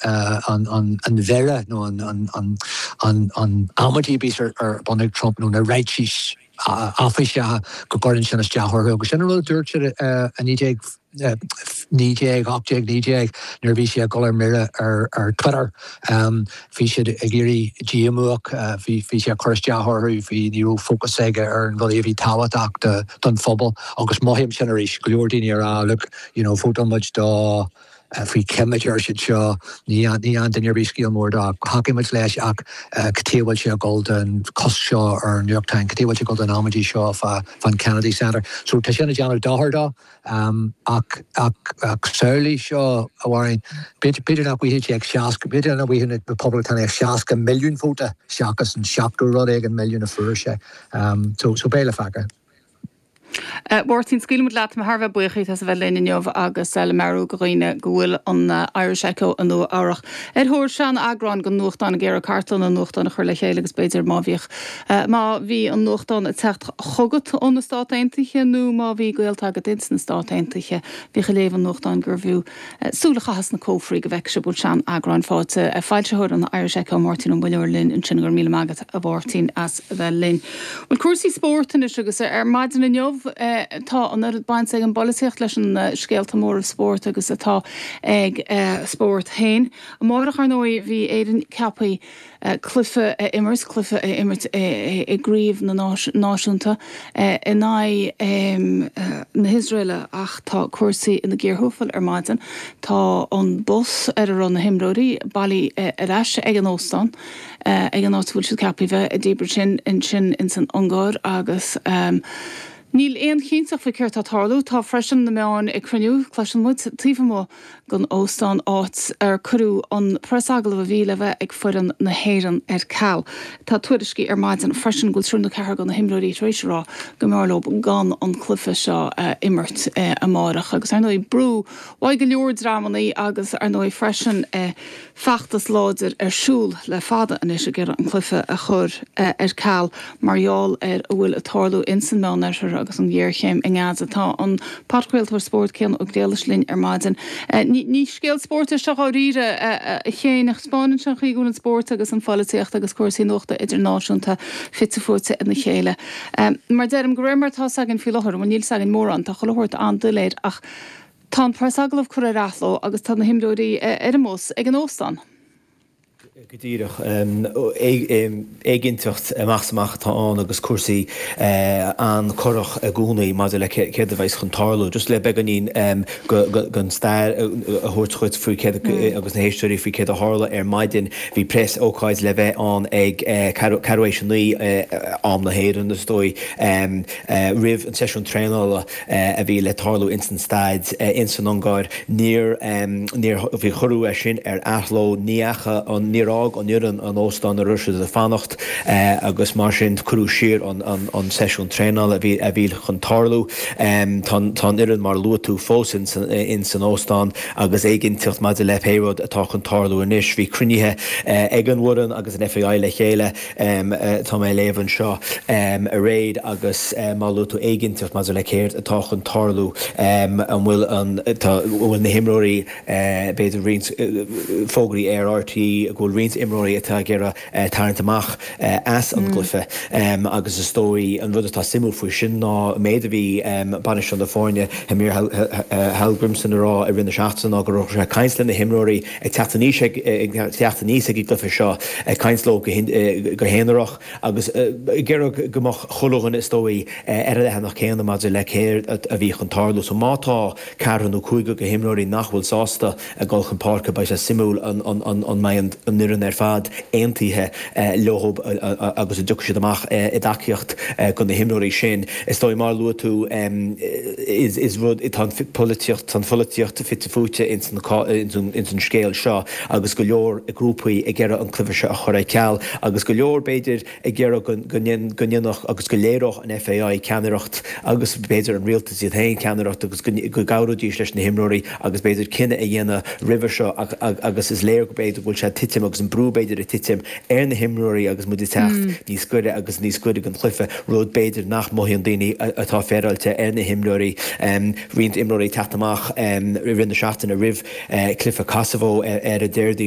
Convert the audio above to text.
an mhire nó an amaidí a bíos ar bun ag Trump nó na ráitis áiféiseacha go gcuireann sin isteach orthu agus sin an rud a dúirt siad i 1918 nuair a bhí sé ag dul ar mire ar Twitter. Bhí siad ag éirí díomuach, bhí sé ag cur isteach orthu, ní raibh fócas aige ar an rudaí a bhí tábhachtach don phobal agus mothaím sin arís, go leor daoine ag rá look, you know, vótáil muid dó, faoi cheimic, ar siad seo, ní an duine a rith scéal mór dó. Thacaigh muid leis ach cad chuige a bhfuil sé ag dul don cosc seo ar an New York Times, cad chuige a bhfuil sé ag dul don amaidí seo fán Kennedy Center. So tá sin ag déanamh dochair dó ach samhlaigh seo, a Mháirín, b'fhéidir nach bhfaigheadh sé ach 60, b'fhéidir nach bhfaigheadh na Poblachtánaigh ach 60 milliún vóta seachas an 70 rud éigin milliún a fuair sé. So beidh le feiceáil. Mháirtín, scaoilfidh muid leat, tá mé thar a bheith buíoch díot as a bheith linn inniu agus le meabhrú do dhaoine go bhfuil an Irish Echo i Nua Eabhrach ar thóir seaneagráin den nuachtán ag iarraidh cartlann an nuachtáin a chur le chéile agus b'fhéidir má bhíodh, má bhí an nuachtán ag teacht chugat ó na Stáit Aontaithe nó má bhí gaolta agat ins na Stáit Aontaithe a bhíodh ag léamh an nuachtáin gurbh fhiú súil a chaitheamh sna cófraí go bhfeicfidh sibh an bhfuil sean-eagráin fáighte. Foilsitheoir an Irish Echo, Máirtín Ó Muilleoir linn ansin, go raibh míle maith agat a Mháirtín as bheith linn. Bhuel, cúrsaí spóirt anois agus ar maidin inniu tá an oiread baint ag an bpolaitíocht leis na scéalta móra spóirt agus atá ag an spórt féin. Amárach, ar ndóigh, bhí Éirinn ceapthaí. cluife a imirt, cluife a imirt i gcraobh na náisiúnta in aghaidh na hIosraeile ach tá cúrsaí ina gcíor thuaifil ar maidin. Tá an bus ar a raibh na himreoirí bailithe ar ais ag an óstán, ag an áit a bhfuil siad ceaptha a bheith, i Debrecen ansin ins an Ungáir agus níl aon chinnteacht faoi céard tá ag tarlú. Tá freisin na meáin ag cruinniú, cloiseann muid, taobh amuigh. den óstán áit ar cuireadh an preasagallamh a bhí le bheith ag foireann na hÉireann ar ceal. Tá tuairiscí ar maidin freisin go bhfuil triúr nó ceathrar de na himreoirí tar éis a rá go mb'fhearr leo gan an cluiche seo a imirt amárach agus ar ndóigh brú uaidh go leor dreamanna agus ar ndóigh freisin feachtas láidir ar siúl le fada anois ag iarraidh an cluiche a chur ar ceal mar gheall ar a bhfuil ag tarlú in san Meánoirthear agus an ghéarchéim i nGaza. Tá an podchraoltóir spóirt Cian Ó Griallais linn ar maidin. Ní scéal spóirt é seo dháiríre, a Chiain, ach spáineann sé an chaoi go bhfuil an spórt agus an pholaitíocht agus cúrsaí nuachta idirnáisiúnta fite fuaite ina chéile. Mar deirim, go réir mar atá a fhios againn faoi láthair, bhuel níl a fhios againn mórán, tá chuile shórt an-doiléir, ach. Tá an preasagallamh curtha ar athló agus tá na himreoirí ar an mbus ag an óstán. Go díreach. Éiginnteacht amach is amach atá ann agus cúrsaí an-corrach i gcónaí maidir le céard a bheas chun tarlú. Just le beagáinín den stair a thabhairt dhuit faoi céard, agus na héisteoirí, faoi céard a tharla ar maidin. Bhí preasócáid le bheith ann ag ceathrú tar éis a naoi, am na hÉireann is dóigh, roimh an tseisiún traenála. a bhí le tarlú ins an staid ins an Ungáir. Níor, níor, bhí, cuireadh é sin ar athló, ní fhaca an, níor fhág an fhoireann an t-óstán áit a raibh siad a' fanacht agus mar sin cuireadh siar an, an, an seisiún traenála a bhí, a bhí chun tarlú. Tá an, tá an fhoireann mar a luaigh tú fós ins an, ins an óstán agus éiginnteacht maidir le pé rud atá chun tarlú anois. Bhí cruinnithe ag an bhfoireann agus an FAI le chéile. Tá mé ag léamh anseo, a Mhairéad, agus mar a luaigh tú éiginnteacht maidir le céard atá chun tarlú, an bhfuil an, tá, an bhfuil na himreoirí, b'fhéidir roinnt fógraí ar RTÉ go bhfuil roinnt imreoirí atá ag iarraidh tarraingt amach as an gcluife agus is dóigh, an rud atá suimiúil faoi sin ná an méid a bhí bainisteoir na foirne, Heimir Hallgrimsson, ag rá i rith na seachtaine ná go raibh sé ag caint leis na himreoirí, ag teacht aníos, ag teacht aníos ag an gcluife seo, ag caint leo go haonarach agus ag iarraidh go mbeadh chuile dhuine, is dóigh, ar an leathanach céanna maidir le céard a bhí chun tarlú. So má tá ceathrar nó cúigear de na himreoirí nach bhfuil sásta a dhul chun páirce, beidh sé suimiúil an mbeidh an fhoireann ar fad aontaithe. leob agus an dtiocfaidh siad amach i dtacaíocht do na himreoirí sin. Is dóigh, mar a luaigh tú, is rud, tá an pholaitíocht, tá an pholaitíocht fite fuaite ins an ins an scéal seo agus go leor grúpaí ag iarraidh an cluife seo a chur ar ceal agus go leor, b'fhéidir, ag iarraidh go ndéanfadh agus go léireodh an FAI ceannaireacht agus, b'fhéidir, an rialtas iad féin ceannaireacht agus go gcabhróidís leis na himreoirí agus b'fhéidir cinneadh a dhéanamh roimhe seo agus is léir go b'fhéidir go bhfuil sé ag titim agus an brú b'fhéidir ag titim ar na himreoirí agus muid ag teacht níos gaire agus níos gaire don gcluife, rud b'fhéidir nach mothaíonn daoine atá féaráilte ar na himreoirí, roinnt imreoirí ag teacht amach i rith na seachtaine roimh chluife Kosovo ar an Déardaoin.